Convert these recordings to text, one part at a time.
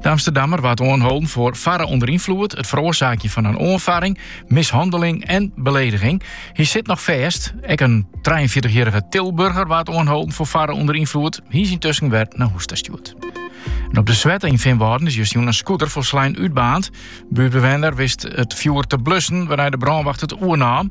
De Amsterdammer waard oanholden foar farre ûnder ynfloed, it feroarsaakjen fan in oanfarring, mishanneling en belediging. Hy sit noch fêst. Ek in trijeenfjirtichjierrige Tilburger waard oanholden foar farre ûnder ynfloed. Hy is yntusken wer nei hûs ta stjoerd. En op de Swette yn Feanwâlden is justjûn in scooter folslein útbaarnd. In buertbewenner wist it fjoer te blussen, wêrnei de brânwacht it oernaam.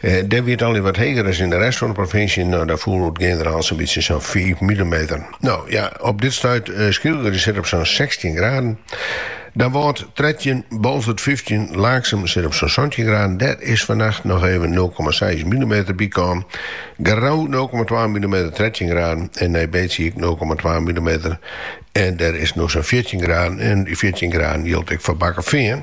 Dêr wie it allegear wat heger as yn de rest fan de provinsje, no dêr foel oer it generaal sa'n bytsje sa'n fiif milimeter. No ja, op dit stuit Skylge sit op sa'n sechstjin graden, Damwâld trettjin, Boalsert fyftjin, Laaksum sit op sa'n santjin graden, dêr is fannacht noch even nul komma seis milimeter by kommen, Grou nul komma twa milimeter, trettjin graden, en Nij Beets ek nul komma twa milimeter en dêr is no sa'n fjirtjin graden en dy fjirtjin graden jildt ek foar Bakkefean.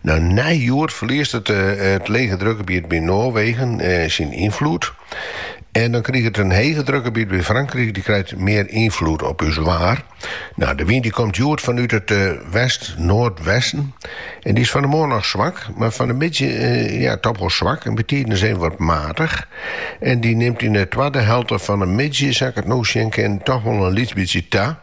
Nou, nei hjoed ferliest it, it lege drukgebiet by Noarwegen syn ynfloed. En dan kriget it in hege drukgebiet by Frankryk, dy krijt mear ynfloed op ús waar. Nou, de wyn dy komt hjoed fanút it west-noardwesten en dy is fan 'e moarn noch swak, mar fan 'e middei ja, toch wol swak en bytidens even wat matich. En dy nimt yn 'e twadde helte fan 'e middei, sa ik it no sjen kin, toch wol in lyts bytsje ta.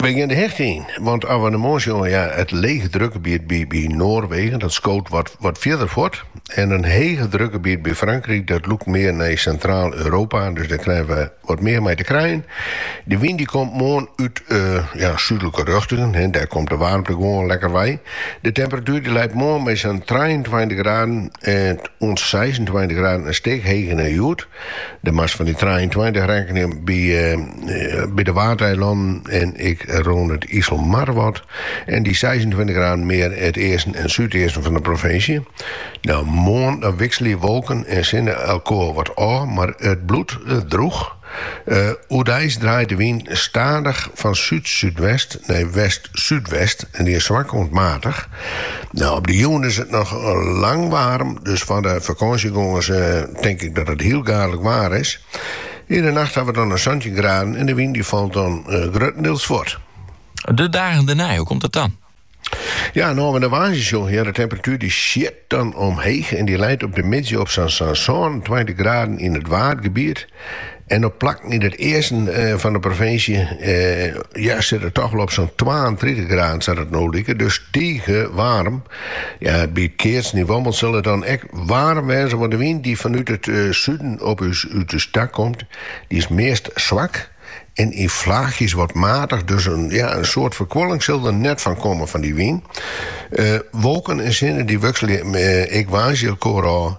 Wy gean de hichte yn, want as we nei moarn sjogge, ja, it lege drukgebiet by Noarwegen, dat skoot wat fierder fuort, en in hege drukgebiet by Frankryk, dat lûkt mear nei Sintraal-Europa, dus dêr krije we wat mear mei te krijen. De wyn dy komt moarn út súdlike rjochtingen, dêr komt de waarmte gewoan lekker wei. De temperatuer dy leit moarn by sa'n trijeentweintich graden oant seisentweintich graden, in stik heger nei hjoed. Dêr moatst fan dy trijeentweintich rekkenje by de Waadeilannen en ek rûn it Iselmar wat en dy seisentweintich graden mear it easten en súdeasten fan de provinsje. No, moarn dan wikselje wolken en sinne elkoar wat ôf, mar it bliuwt droech. Oerdeis draait de wyn stadich fan súd-súdwest nei west-súdwest en dy is swak oant matich. Nou, op de jûn is it noch lang waarm, dus foar de fakânsjegongers tink ik dat it hiel gaadlik waar is. Yn de nacht hawwe we dan in santjin graden en de wyn dy falt dan gruttendeels fuort. De dagen dêrnei, hoe komt it dan? Ja, no as we nei woansdei sjogge, ja, de temperatuer dy sjit dan omheech en dy leit op de middei op sa'n sânentweintich graden yn it Waadgebiet. En op plakken yn it easten fan de provinsje ja, sit it toch wol op sa'n 32 graden sa't it no liket. Dus tige waarm. Ja, by it keatsen yn Wommels sil it dan ek waarm wêze, want de wyn dy't fanút it suden op ús út ús ta komt, dy is meast swak en yn flaachjes wat matich. Dus ja, in soad ferkuoling sil der net fan komme fan dy wyn. Wolken en sinne dy wikselje ek woansdei elkoar ôf.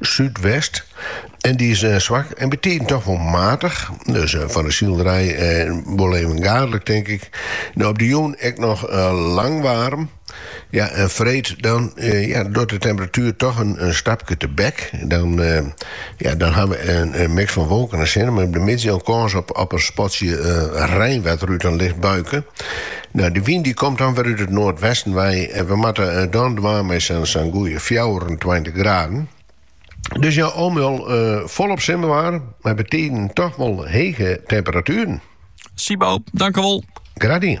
súdwest en dy is swak en bytiden toch wol matich. Dus fan de silerij wol even gaadlik, tink ik. Nou, op de jûn ek noch lang waarm. Ja, en freed dan ja, docht de temperatuer toch in, in stapke tebek. Dan, ja, dan ha we in, in miks fan wolken en sinne, mei yn 'e middei kâns op, op in spatsje uh, reinwetter út in licht buike. Nou, dy wyn dy komt dan wer út it noardwesten wei en we moatte dan dwaan mei sa'n goeie fjouwerentweintich graden. Dus ja, al mei al folop simmerwaar, mei betiden toch wol hege temperatueren. Sibo, dankewol. Graach dien.